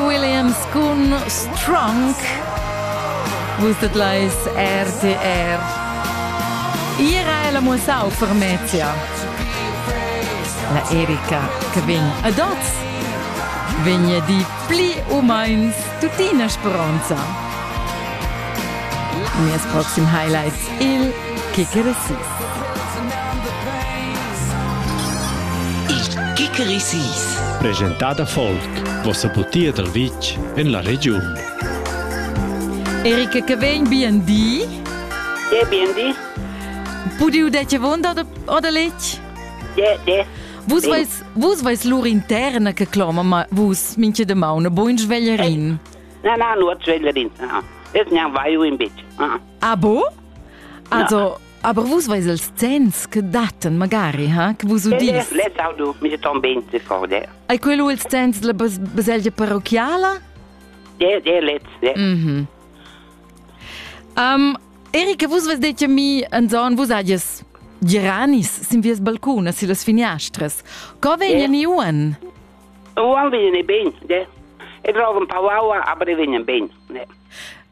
Williams cun Strong. Vus dat leis RTR. Ira è la mussau per Mezia. La Erika che vegn ad oz vegna di pli u meins tuttina speronza. Mes proxim highlights il Kicker Assist. Il Kikerisis. Presentada folk. Vossa butia dal vitg en la regiun. Erika, che vegn BND? Ge BND. Pudi udete vonda oder letg? Ge, ge. Vus vais, vus vais lur interna che cloma, ma vus minche de mauna, bo in sveglierin. Na, na, nur sveglierin. Es nian vai in bitch. Ah bo? Also, aber vus veis els zenns che datten magari, ha? Che vus udis. Les audo militant ben se forde. Ai quello ils zenns la baselgia parrocchiala? Der, der letz, der. Mhm. Um, Erika, vus vos detto mi en zon vus adies giranis sin vies balcun si las finiastras. Co vegnen yeah. iuen? Uan vegnen ben, de. E trovan pauaua, aber vegnen ben, de.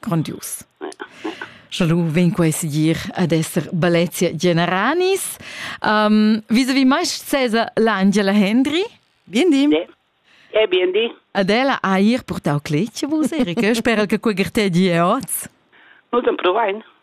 grondius. Scha lu vegn quei segir ad esser Balezia Generanis. Um, Vis-a-vis mai sesa l'Angela Hendry? Bindi. E bindi. Adela ha ir purtau cletg a vus, Erika. Spera che quei gertè di è oz. Nu, dann provain.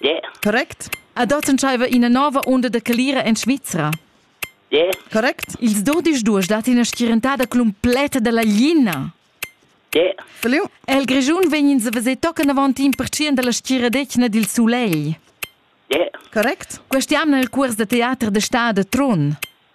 Yeah. Correct? Ad oz entschaiva ina nova unda da calira en Svizra. Yeah. Correct? Ils dudisch duas dat ina schierentada cumpleta dalla glina. Yeah. Feliu? El Grischun vegnins a veser tocan avant in percient dalla schieradetgna dil sulegl. Yeah. Correct? Questa jamna il cuors da teater da stad a Trun.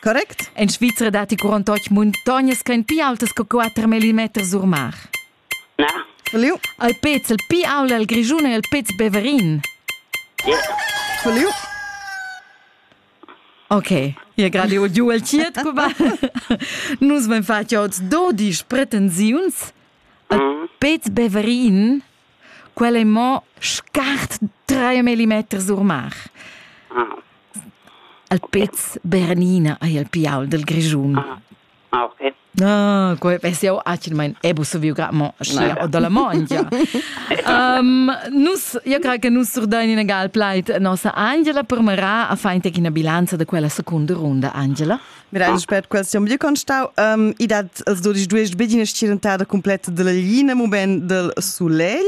Correct? En Svizra datti curant otg muntognas ch'èn pli autas che quatter millimeters or mar. Na. Verliu? Il pez il pli aul el Grischun è il pez Beverin. Yeah. Verliu? Ok, e gerade ho giu el tiet, Cuba. Nus vam fatg oz dodisch pretensiuns. Il pez Beverin Quel è mo scart tre millimeters sur mar. Ah. Al pez Bernina ei il piaul del Grischun. Ah. Ah, okay. Ah, quei pensi io accidmain ebu so viu gra mo sia o dalla mongia. um, nus io cra che nus surdain in gal plait nossa Angela per mera a fain tec in bilanza da quella seconda runda Angela. Grande per quel sium vi constau. Um, I dat els dodisch duesch bedina estirentada completa della linea moment del soleil.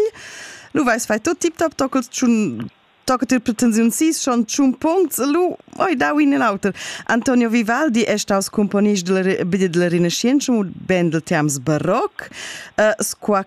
Lu vais fai tot tip top toccals tschun toccat il pretensiun sis schon tschun puncts lu oi dau in auter Antonio Vivaldi è staus componist della, bene della Rinascenza und band del Terms baroc uh, squa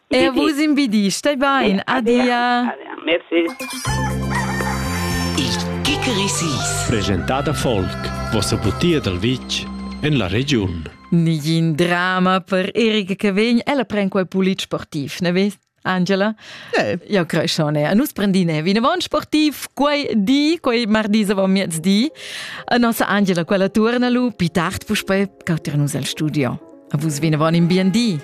Er vus imbidi, stai bain, adia. Merci. Il Kickerisis. Presentata Folk, vossa butia dal vitg en la regiun. Nigin drama per Erika che vegn, ella pren quel pulit sportiv, ne vest? Angela? Eh. Ja, Creschone. A nus prendine vinavon sportiv quei di, quei mardi avon miezdi. A nossa Angela quella turna lu, pi tard puspei, cauter nus al studio. A vus vinavon in bien di.